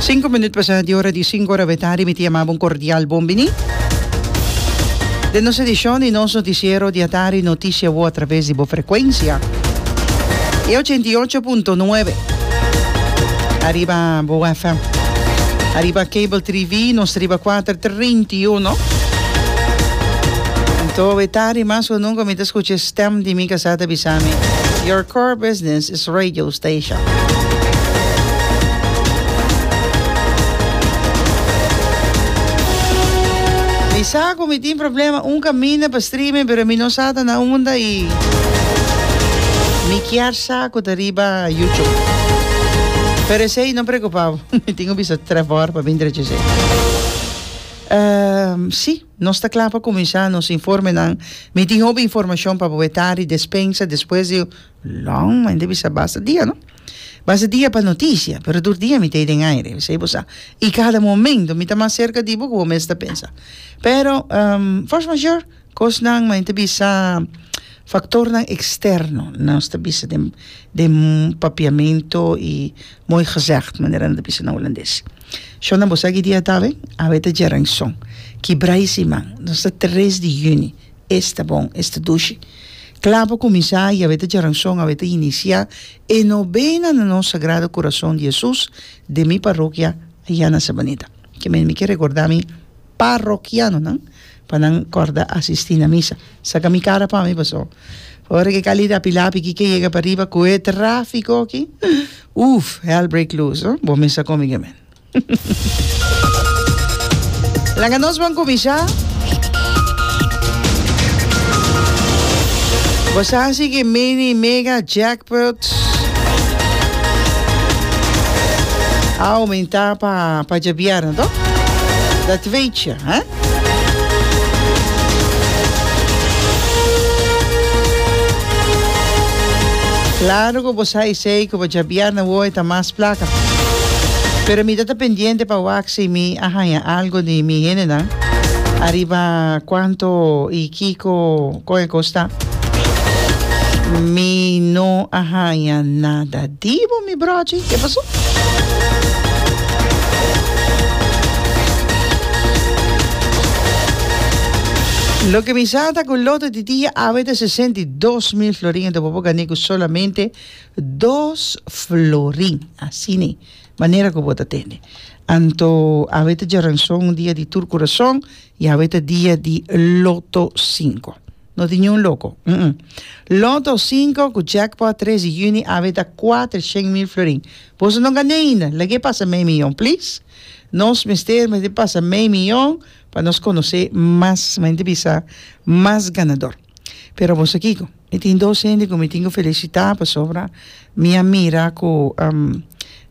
Sinku minut pasá di ora di sinku ora awetardi mi ta yamaba un kordial bon biní den nos edishon di nos notisiero di atardi Noticia Wou atraves di bo frekuensia e ochenta i ocho punto nuebe ariba bo FM ariba Cable TV nos ta riba kuater treinta i uno anto awetardi mas ku nunka mi ta skucha e stèm di mi kasá ta bisa mi Your core business is radio. station. Mi sa cu mi tin problema un caminda pa streaming pero mi no sa ta na unda y mi kier sa cu ta riba YouTube. Pero esey no preocupa bo mi tin un bisa Trevor pa bin drecha esey. Ehm si nos ta cla pa cuminsa nos informenan. Mi tin hopi informacion pa bo e tari despensa despues di. Long ma inti bisa basta dia no basta dia pa noticia pero dur dia mi tei den aire bisai bo sa y cada momento mi ta mas cerca di bo cu bo mes ta pensa pero um fors mayor cosnan ma inti bisa factornan externo nos ta bisa den den papiamento y mooi gezegd manera no ta bisa na holandes shona bo sa kidia ta awe awe ta djeranson ki brai siman nos ta tres di juni es ta bon, es ta dushi. Kla pa kuminsá, Yahweh ta djaranson, Aweh ta inisiá e nobena na nos Sagrado Kurason di Hesus den mi parokia ayá na Sabaneta. Ke men mi ke rekordá mi parokianonan pa nan kòrda asistí na misa. Saka mi kara pa mi pasó ora ke Khalid a pilá piki ke yega pariba ku e tráfiko aki, ùf, hell break loose, no? Bo mester komiga men. Laga nos bon kuminsha. Bo sa hasi ki mini mega jackpot a aumenta pa pa dje bierna toh dat weetje hè. Claro cu bo sa esey cu bo dja bia na woe ta mas placa. Pero mi ta ta pendiente pa wak si mi a haña algo di mi hendenan ariba cuanto y kico Koe kos ta? Mi no a haña nada di bo mi brochi, ke pasó? Loke mi sa ta ku loto di dia a wete sesenta i dos mil florin ento bo por gané ku solamente dos florin. Asina manera ku bo ta tende. Anto a wete djaranson un dia di tur kurason Yahweh ta dia di loto sinko. No tin niun loko. Mm-mm. Loto sinko ku jackpot tres di juni awe ta kuater shen mil florin. Boso no gané ainda, lag'é pasa mei miyon, please. Nos mester mester pasa mei miyon pa nos konosé mas mente bisa mas ganador. Pero boso kiko, mi tin dos hende ku mi tin ku felisitá pasobra mi a mira ku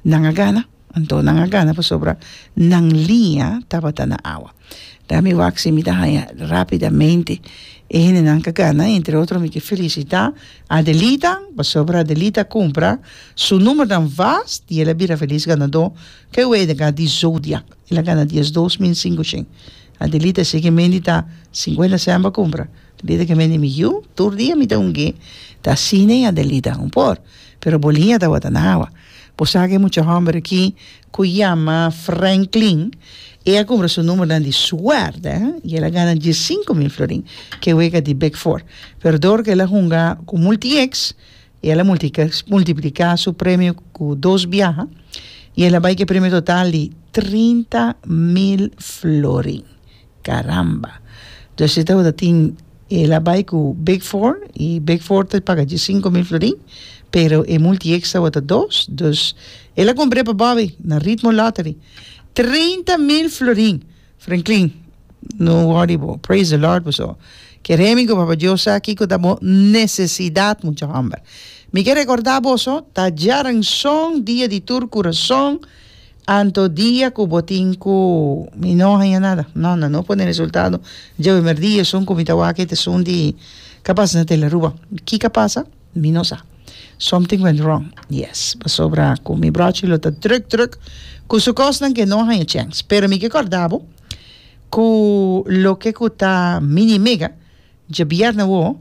nan a gana. Anto nan a gana pasobra nan liña tabata na awa. Dea mi wak si mi ta haña rapidamente e hendenan ku a gana. Entre otro mi ke felisitá Adelita pasobra Adelita a kumpra su numbernan vast i el a bira felis ganadó. Ke wei ta ka di zodiak. El a gana dies dos min sinku shen. Adelita si ke mendi ta sinkuenta sèn pa kumpra. Adelita ke mendi mi yu tur dia mi ta hungu'é. Ta asina ei Adelita un por, pero bo liña tabata na awa. Bo sa aki e mucha homber aki ku yama Franklin? E a kumpra su numbernan di suerte i el a gana dies sinku mil florin ke wega di Big Four. Pero dor ku el a hunga ku multieks i el a multipliká su premio ku dos biaha i el a bai ku e premio total di trinta mil florin. Caramba! Dus e ta ora tin el a bai cu Big Four y Big Four ta paga dje sinku mil florin, pero e multi ex ta wata dos, dus el a cumpre pa Bobby na Ritmo Lottery treinta mil florin. Franklin, No worry bo, praise the Lord bo so. Ke Remy cu Papa Dios sa kico ta bo necesidad, mucha homber. Mi ke recorda bo so, ta djaranson dia di tur curason Anto dia cu bo tin cu mi no haña nada, no, nan no pone resultado, dje primer dia esun cu mi ta wak ete sun di capaz nan tela Aruba, kica pasa? Mi no sa, something went wrong, yes, pasobra cu mi brochi lo ta druk druk cu su cosnan que no haña chens, pero mi ke corda bo cu loke cu ta mini mega dje bier na wo,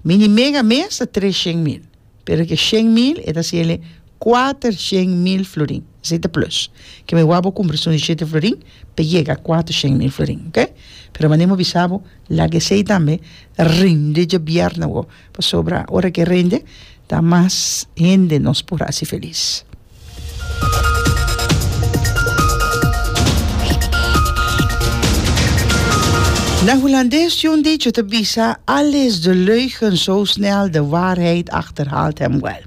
Mini mega mes ta tres shen mil, pero ke shen mil e ta hasiele kuater shen mil florin. Esei ta plus. Ke mi wou bo kumpra esun di shete florin pa e yega a kuater shen mil florin, ok? Pero mane mi a bisa bo, laga esei tambe rende dje bierna wou, pasobra ora ke rende ta mas hende nos por hasi felis. Na Hulandes tin un dicho ta bisa, Alles de leugen zo snel, de waarheid achterhaalt hem wel.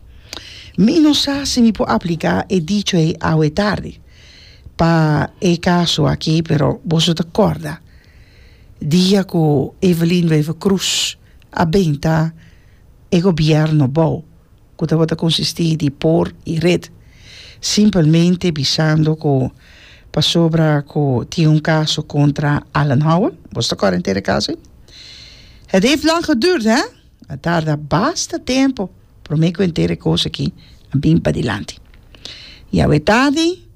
Mi no sa si mi por aplica e dicho ei awe tardi pa e caso aki, pero boso ta corda dia cu Evelyn Wever-Croes a benta e gobierno bou? cu tabata consisti di por y red, simpelmente bisando cu pasobra cu tin un caso contra Alan Howell, bo sta cor enter e caso ey? Het heeft lang geduurd, hè? A tarda basta tempo prome cu enter e cos aki a bin padilanti. Y awe tardi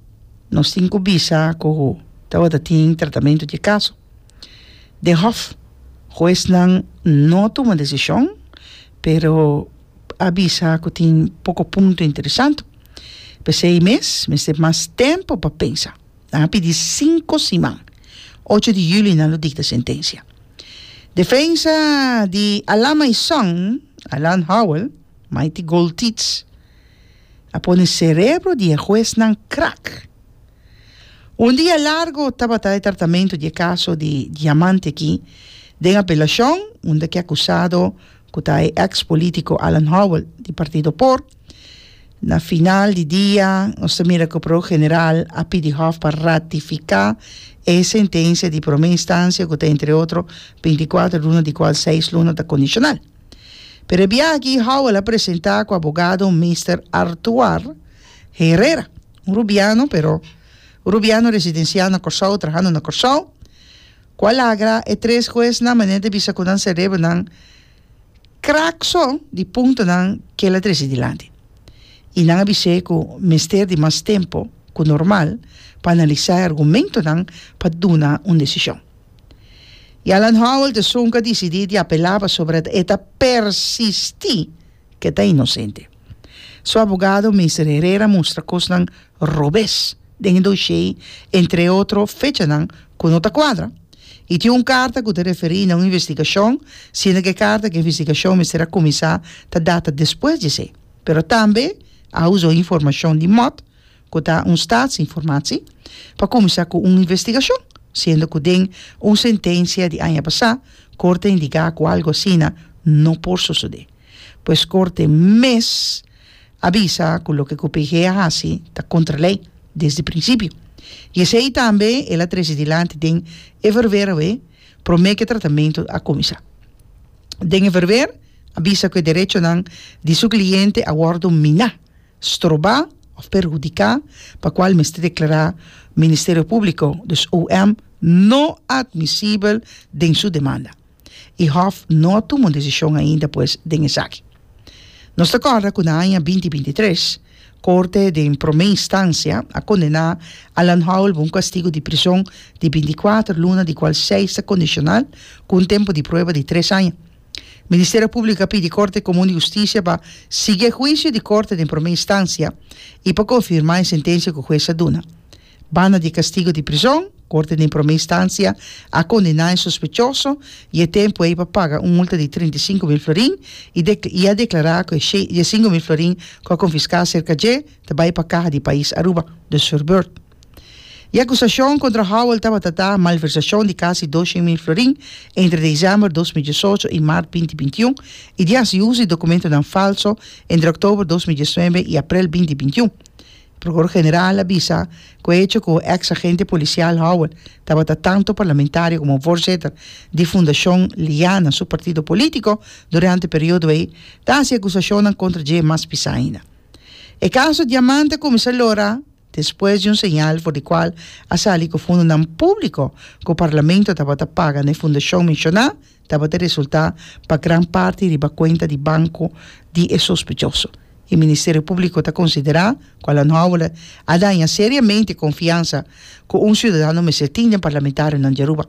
nos tin cu bisa cu tabata tin tratamento di e caso. Den Hof, huesnan no tuma decision, pero. a bisa cu tin poco punto interesante. P'esey mes, mester mas tempo pa pensa. Nan a pidi cinco siman. Ocho di juli nan lo dicta sentencia. Defensa di Alama y Son, Alan Howell, Mighty Gold Teats, a pone cerebro di e huesnan krak. Un dia largo tabata e tratamento di e caso di diamante aki den apelacion, unda ki acusado ku ta e eks polítiko Alan Howell di Partido por, na final di dia nos ta mira ku Prokuró General a pidi Hof pa ratifiká e sentensia di promé instansia ku ta entre otro bintikuater luna di kual seis luna ta kondishonal. Pero e biaha aki Howell a presentá ku abogado Mister Artuar Herrera, un rubiano pero un rubiano residensiá na Kòrsou, trahando na Kòrsou, Cu a lagra e tres huesnan manera di bisa cu nan cerebronan krak so di puntonan cu el a trece dilanti y nan a bis'e cu mester di mas tempo cu normal pa analisa e argumentonan pa duna un decision. Y Alan Howell tesun cu a dicidi di apela pasobra e ta persisti cu e ta inocente. Su abogado Mister Herrera mustra cosnan robes den e doshé, entre otro fechanan ku no ta kuadra. I tin un karta ku ta referí na un investigashon, siendo ku e karta ku e investigashon mester a kuminsá ta data despues di esei. Pero tambe a usa un informashon di mot ku ta un statsinformatie pa kuminsá ku un investigashon, siendo ku den un sentensia di aña pasá Kort a indigá ku algu asina no por sosodé. Pues Kort mes. a bisa cu loke cu PG a haci ta contra ley desde principio y esey tambe el a trece dilanti den e verwer awe prome cu e tratamento a cuminsa. Den e verwer a bisa cu e derechonan di su cliente a wordo mina, stroba of perhudica pa cual mester declara Ministerio Publico, dus OM, no admisibel den su demanda. i Hof no a tuma un desishon ainda pues den esaki. Nos ta kòrda ku na aña binti binti tres, Korte den Promé Instansia a kondená Alan Howell pa un kastigu di prison di binti kuater luna di kual seis ta kondishonal ku un tempu di prueba di tres aña. Ministerio Públiko a pidi Korte Komun di Hustisia pa sigui e huisio di Korte den Promé Instansia i pa konfirmá e sentensia ku hues a duna. Banda di kastigo di prizon, Korte den Promé Instansia a kondená e sospechoso i e tempu ei pa paga un multa di treinta i sinku mil florin i de i a deklará ku e shei i e sinku mil florin ku a konfiská serka dje ta bai pa kaha di pais Aruba, dus for beurt. E akusashon kontra Howell tabata ta malversashon di kasi doshen mil florin entre desèmber dos mil diesocho i mart binti binti un i di hasi uso di dokumentonan falso entre òktober dos mil diesnuebe i aprel binti binti un. Prokuror-General a bisa ku hecho ku eks agente polisial Howard tabata tantu parlamentario komo vorzitter di Fundashon Liana su partido polítiko durante periodo ei ta hasi akusashonnan kontra dje mas pisa ainda. E kaso Diamante a kuminsá lora despues di un señal for di kual a sali ku fundonan públiko ku parlamento tabata paga na e fundashon menshoná, Tabata resultá pa gran parti riba kuenta di banko di e sospechoso i Ministerio Públiko ta konsiderá ku Alanhoule a daña seriamente konfiansa ku un siudadano mester tin den parlamentarionan di Aruba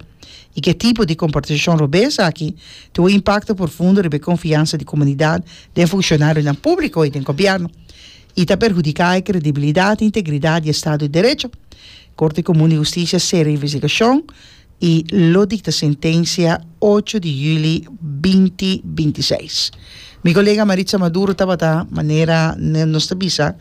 i ku e tipo di komportashon robé esaki tin un impakto porfundo riba e konfiansa di komunidat den funshonarionan públiko i den gobièrnu i ta perhudiká e kredibilidat i integridat di e Estado di Derecho. Korte Komun di Hustisia sera e investigashon. y lo dicta sentencia ocho di juli binti binti seis. Mi colega Maritza Maduro tabata, manera nos ta bisa,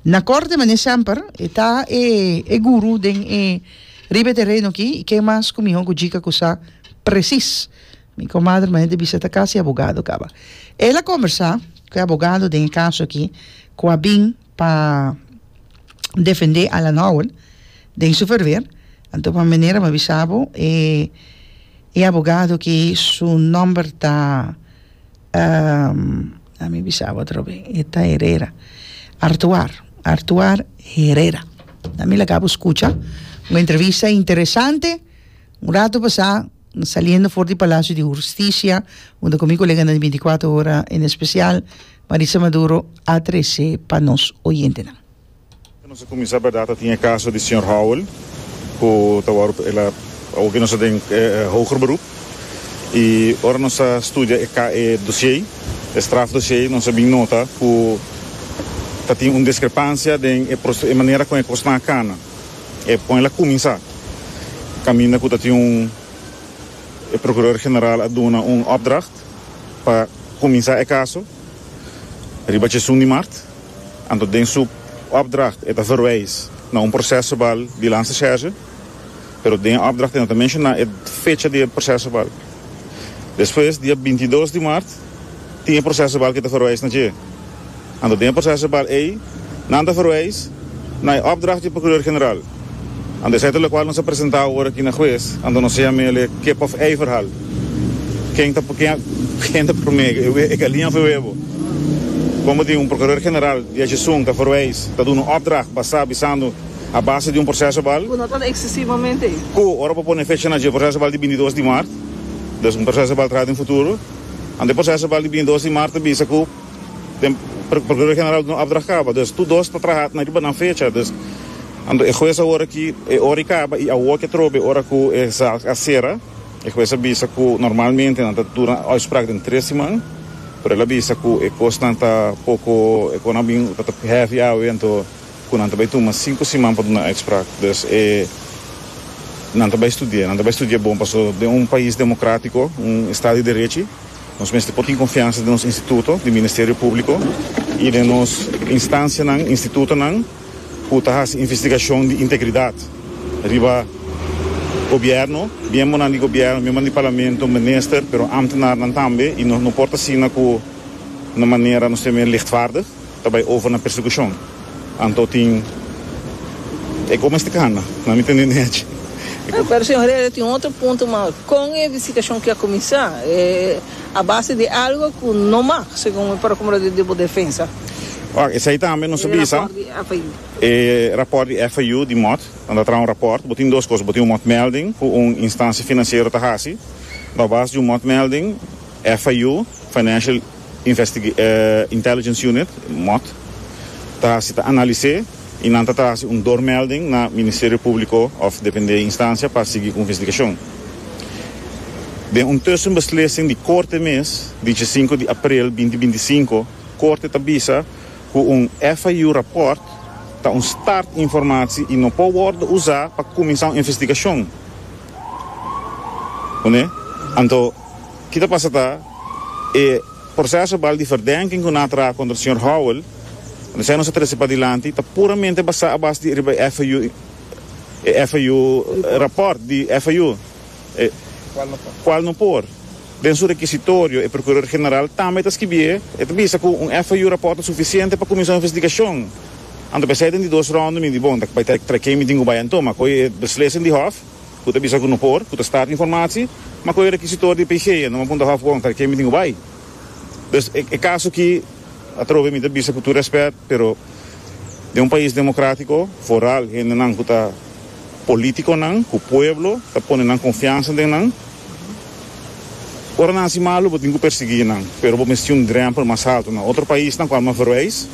na corte mane semper e ta e e guru den e riba e terreno aki y ken mas cu miho cu djica cu sa precis. Mi comadre mane ta bisa ta casi abogado caba. Ela conversa cu e abogado den e caso aki cu a bin. pa defende Alan Howell den su ferver anto pa manera m'a bisa bo e e abogado ki su nomber ta a mi bisa bo atrobe e ta Herera Artuar Artuar Herera a mi laga bo skucha un entrevista interesante un rato pasá. Saliendo for di Palacio di Hursticia, junto cu mi coleganan di Binticuater Hora, en especial Marisa Maduro, a trece pa nos oyentenan. Nos a cuminsa bardad ta tin e caso di señor Howell cu ta wor el a awor nos ta den hoger beroep y ora nos a studia e ca e dossier e straf dossier nos a bin nota cu ta tin un discrepancia den e manera con e cos nan a cana. E pon el a kuminsá kaminda ku ta tin un e prokuror general a duna un opdracht pa kuminsá e kaso riba chesun di mart. Anto den su opdracht e ta verwys na un proses verbal di Lanstercherche, pero den e opdracht e no ta menshoná e fecha di e proses verbal. Despues, dia binti i dos di mart, tin e proseso bal ke ta verwijs na dje. Anto den e proseso bal ei, nan ta verwijs na e opdracht di Procureur-General. Anto esei ta lokual nos a presenta awor aki na hues, anto nos a yama el'e kip of ei verhal. Ken ta ken ta prome, e galinja of e webo? Kon bo tin un Procureur-General di esun ta verwijs, ta duna opdracht basá bisando A base di un proseso bal. Ku no ta eksesivamente. Ku ora bo pone fecha na dje proseso bal di bintidos di mart, dus un proseso bal traha den futuro, ante proseso bal di bintidos di mart ta bisa ku den Prokurador General no opdracht kaba. Dus tur dos ta traha na riba nan fecha. Dus ando e hues awor aki e ora i kaba i awor ke atrobe e ora ku e zaak a sera. E hues a bisa ku normalmente nan ta duna uitspraak den tres siman, pero el a bisa ku e kosnan ta poko, e kosnan a bin tabata hefi awe, anto Cu nan ta bay tuma cinco siman pa duna uitspraak, dus e nan ta bay studia, nan ta bay studia bon paso den un pais democratico, un estado di derechi, nos mester por tin confiansa den nos instituto di Ministerio Publico y den nos instancianan, institutonan cu ta haci investigacion di integridad riba Gobierno, miembonan di Gobierno, miembronan di Parlamento, minister, pero ambtenarnan tambe y nos no por ta asina cu na manera nos ta men lichtvaardig. Ta bai over na persecucion. Anto tin e comesticana na mi tende nechi. E. Pero señor Herrera tin otro punto mas, con e visitacion ki a cuminsa e a base di algo cu no mag segun mi procumro di di bo defensa. Wacht, esai tambe nos a bisa. E rapport di FIU. E rapport di FIU di mot nan ta traha un rapport. Bo tin dos cos, bo tin un motmelding cu un instancia financiero ta haci. No a base di un motmelding. FIU, Financial Intelligence Unit, mot, ta hasi ta analis'é i nan ta trahasi un doormelding na Ministerio Públiko òf depende instansia pa sigui ku investigashon. Den un tussenbeslising di Korte mes di diesinku di aprel binti binti sinku, Korte ta bisa ku un FIU rapòrt ta un start informasi i no por wòrdu usá pa kuminsá un investigashon. Anto. Ki ta pasa ta, e proseso bal di verdenking ku nan a traha kontra señor Howell, ora esei nos a trese padilanti, ta puramente basá a base di riba e FIU, e FIU rapòrt di FIU, e kual no por. Den su rekisitorio e prokuror general tambe ta skibié, e ta bisa ku un FIU rapòrt ta sufisiente pa kuminsá un investigashon. Anto pa esei den di dos rònde mi di bon, ta bai ta kemi tin ku bai anto, ma koe e beslissing di hòf. Cu ta bisa cu no por, cu ta start informatie, ma cu e requisitor di PG a no a punta hof contra ken mi tin cu bay. Dus e caso aki, atrobe mi ta bisa cu tur respet, pero den un pais democratico, vooral hendenan cu ta politiconan, cu pueblo ta pone nan confiansa den nan, ora nan haci malo bo tin cu persegui nan, pero bo mester tin un drempel mas alto. Na otro paisnan, cu al mas verwijs,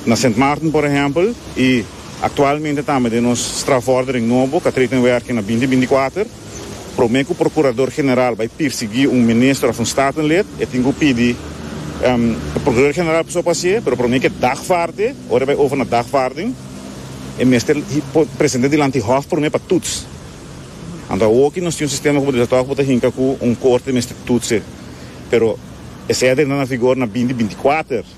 na Sint Maarten por ehempel, y. Aktualmente tambe den nos strafvordering nobo ka trete in werking na binti binti kuater. Promé ku prokurador general bai pirsiguí un minister òf un statenlid, e tin ku pidi e prokurador general pasobra pa hasié, pero promé ke dagvaarde, ora e bai over na dagvaarding, e mester present'é dilanti hòf promé pa tuts. Anto awoki nos tin un sistema ku bo desatoa ku bo ta hinka ku un korte mester tuts'é, pero esei a drenta na vigor na binti binti kuater.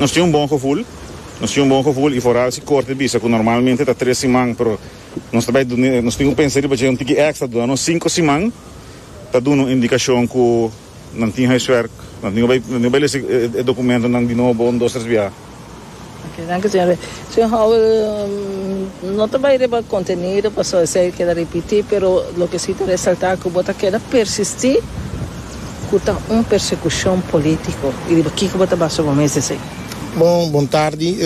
Nos tin un bon gevoel. Nos tin un bon gevoel y foral si corte bisa cu normalmente ta tres siman pero nos ta bay dune nos tin cu pensa riba dje un tiki extra duna nos cinco siman ta duna un indicacion cu nan tin huiswerk nan tin cu bay nan tin cu bay lesa e documentonan di nobo un dos tres biaha. Oke, danki señor. Señor Howell, no ta bai riba contenido pasobra esei keda repiti, pero loke si ta resalta cu bo ta keda persisti cu ta un persecucion politico y riba kico bo ta basa bo mes esei. Bon, bon tardi.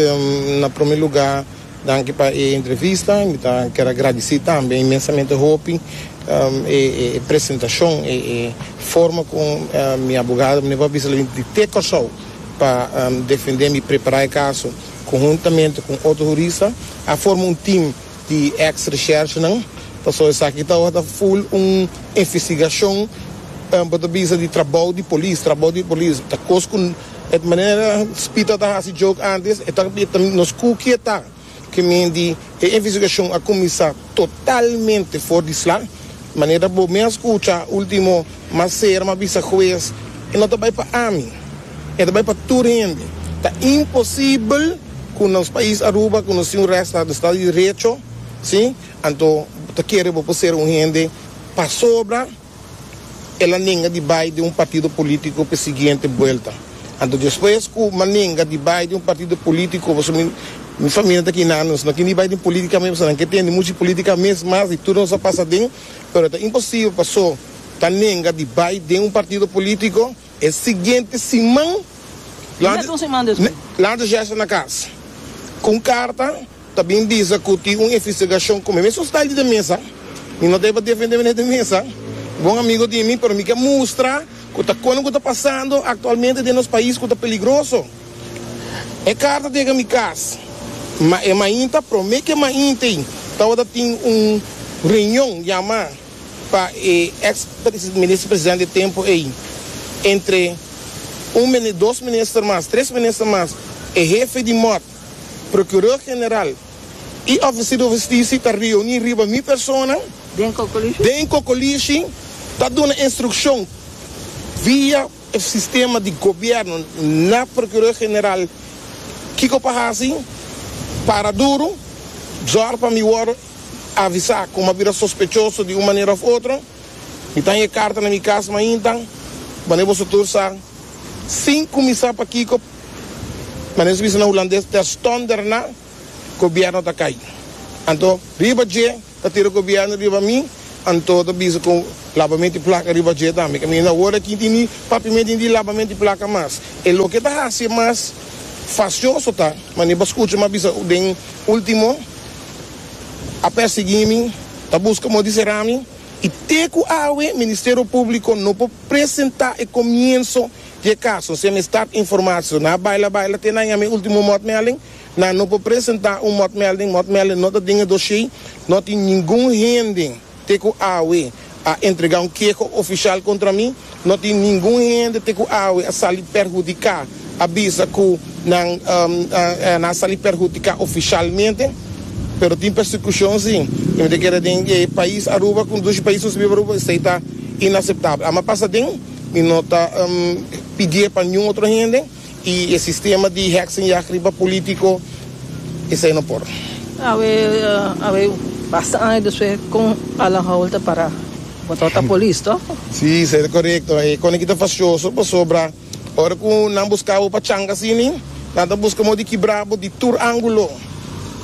Na prome luga danki pa e entrevista y mi ta ker a gradici tambe inmensamente hopi e presentacion, e forma cu mi abogado menen por a bisa la binta di te Corsou. Pa defende mi prepara e caso cu huntamente cu un otro hurista a forma un team di ex recherchenan paso esaki ta oha ta full un investigacion bo ta bisa di trabou di polis trabou di polis ta cos cu manera Spita ta haci joke antes e ta nos cu ki e ta. Ke men di e investigashon a kuminsá totalmente for di sla. Manera bo mes kucha último mas Serma a bisa hues, E no ta bai pa ami, e ta bai pa tur hende. Ta imposibel ku nos pais Aruba, ku nos tin un rèsta di Estado di Derecho, si, anto bo ta kere bo por ser un hende pasobra. el a nenga di bai den un partido politico p'e siguiente buelta. Anto despues cu m'a nenga di bai den un partido politico, pasobra mi, mi famia ta aki nan, nos no kende bai den politica mes, pasobra nan ke tende muchu politica mes mas di tur nos a pasa den, pero ta imposible pa so ta nenga di bai den un partido politico. E siguiente siman, Lante Jesse na cas cu un carta ta bin bisa cu tin un investigacion cu mi. Mi asustai di den mesa. Mi no ta hiba defende mi den mesa. Bon amigo di mi, pero mi ke mustra cu ta cono cu ta pasando actualmente den nos pais cu ta peligroso. E carta ta yega mi cas, ma e mainta, prome ke mainta ei, tawata tin un reunion yama. pa e ex Minister Presidente di tempo ey, entre un mini, dos minister mas, tres minister mas, e hefe di mot, Procureur General y Oficier di Husticia ta reuni riba mi persona den Cocolishi ta duna instruccion via e sistema di Gobierno na Procureur General kico pa haci, para duro, zorg pa mi worde. Avisa kuma bira sospechoso di un manera of otro. Mi ta haya karta na mi kas mainta. Wanneer boso tur sa sin kumisa pa kiko manera nos bisa na Hulandes terstonder na gobierno ta kai. Anto riba dje ta tira gobierno riba mi. Anto ta bisa ku labamento di plaka riba dje tambe. Ke mi no hoor aki tin di papiamento di labamento di plaka mas. E loke ta hasi mas fasioso ta manera pa skucha mi a bisa den ultimo. a persegui mi, ta busca modo di sera mi y te cu awe Ministerio Publico no por presenta e comienzo di e caso. Si a mestad informacion a baila baila te na yama e ultimo motmelding, nan no por presenta un motmelding, motmelding no ta den e doshey, no tin ningun hende. Te ku awe a entregá un keho ofisial kontra mi, no tin ningun hende te ku awe a sali perhudiká, a bisa ku nan a na sali perhudiká ofisialmente, pero tin persekushon sí. I mi ta kere den e pais Aruba ku dushi pais nos ta biba Aruba, esei ta inaseptabel. Amba pasa den mi no ta pidié pa niun otro hende. Y e sistema di heksenjag riba politico, esey no por. Awe awe basta aña despues con Alan Howell ta para botao ta polis to? Si esey ta corecto. E con aki ta facioso pasobra ora cu nan busca bo pa changa asini nan ta busca modo di kibra bo di tur angulo.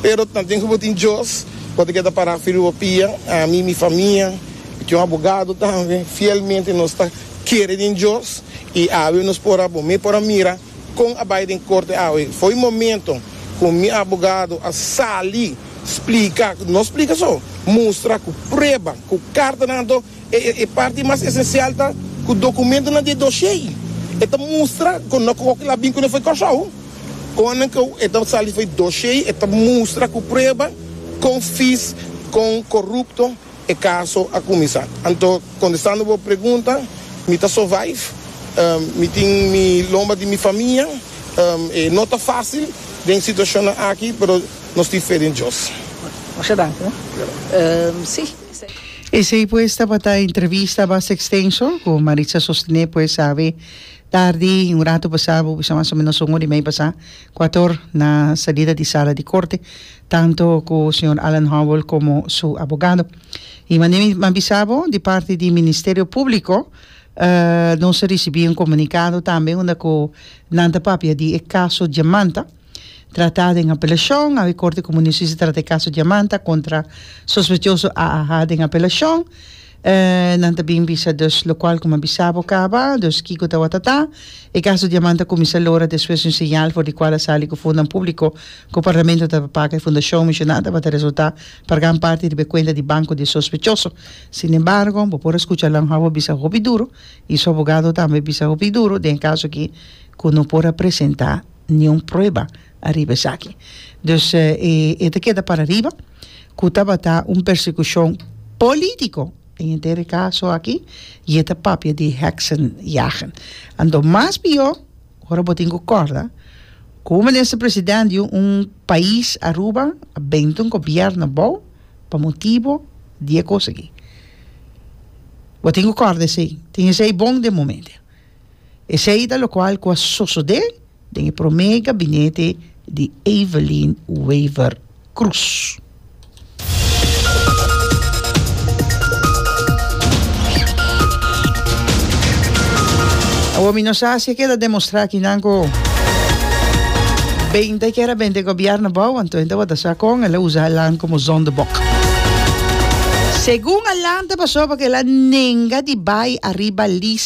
Pero nan tin cu bo tin Dios cu ta keda para firmi bo pia. Ami mi famia y con abogado tambe fielmente nos ta. kere den Dios y awe nos por a bo me por a mira con a bay den corte awe fo'i momento cu mi abogado a sali splica no splica so mustra cu prueba cu cartanan anto e parti mas esencial ta cu documentonan den doshey e ta mustra cu no cu oki la bin cune fo'i Corsou con nan cu e ta sali fo'i doshey e ta mustra cu prueba con fees con corrupto. E caso a cuminsa. Anto, contestando bo pregunta, mi ta survive. Mi tin mi lomba di mi famia. E no ta facil den situacionnan aki, pero nos tin fe den Dios. Masha danki no. Sí. Esey pues tabata entrevista basta extenso cu Maritza Sostené pues awe tardi y un rato pasá bo bisa mas o menos un ora y mei pasá cu ator na salida di sala di corte tanto ku señor Alan Howell komo su abogado. I manera mi a bisa bo, di parti di Ministerio Públiko nos a risibí un komunikado tambe unda ku nan ta papia di e kaso Diamanta tratá den apelashon. Awe Korte Komunisische trata e kaso Diamanta kontra sospechoso AAH den apelashon. Nan ta bin bisa dus lokual kuma bisa bo kaba, dus kiko ta watata. E kaso diaman ta kuminsa lora despues di un señal for di kual a sali ku fondonan públiko ku Parlamento tabata paga. E fundashon mishona tabata resultá pa gran parti riba e kuenta di banko di e sospechoso. Sin embargo bo por a skucha Alan Howard bisa hopi duru i su abogado tambe bisa hopi duru den e kaso aki ku no por a presentá niun prueba. ariba esaki. Dus e ta keda parariba ku tabata un persekushon polítiko den e dere kaso aki i e ta papia di heksenjagen. Anto mas pió ora bo tin ku kòrda ku un minister president di un pais, Aruba, a bende un gobièrnu bou pa motibu di e kos aki. Bo tin ku kòrda esei. Tin esei bon den momentu. Esei ta lokual ku a sosodé den e promé gabinete di Evelyn Wever Croes. Awor mi no sa si e keda demostrá akinan ku bende kier a bende gobièrnu bou anto e tabata sa kon el a usa Alan komo zondebok. Segun Alan ta pasó pa ku el a nenga di bai ariba lis.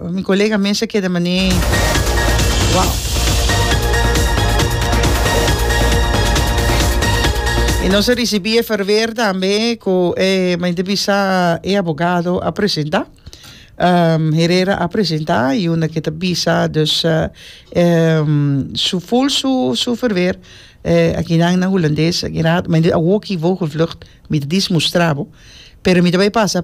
Mi colega mes a keda manee wow. Y nos a recibi e verweer tambe cu e men te bisa e abogado a presenta. Um, Herrera a presenta y una que te bisa dus uh, um, su full su su verweer eh, aquí nan na Hollandes, aquí raad, men a woki vogelvlucht, mi te dis mustrabo, pero mi te bay pasa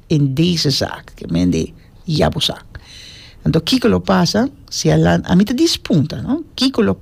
in dese zak ke men de ya bo sa. Anto kiko lo pasa si a lanta, a mi ta dispunta no kiko lo.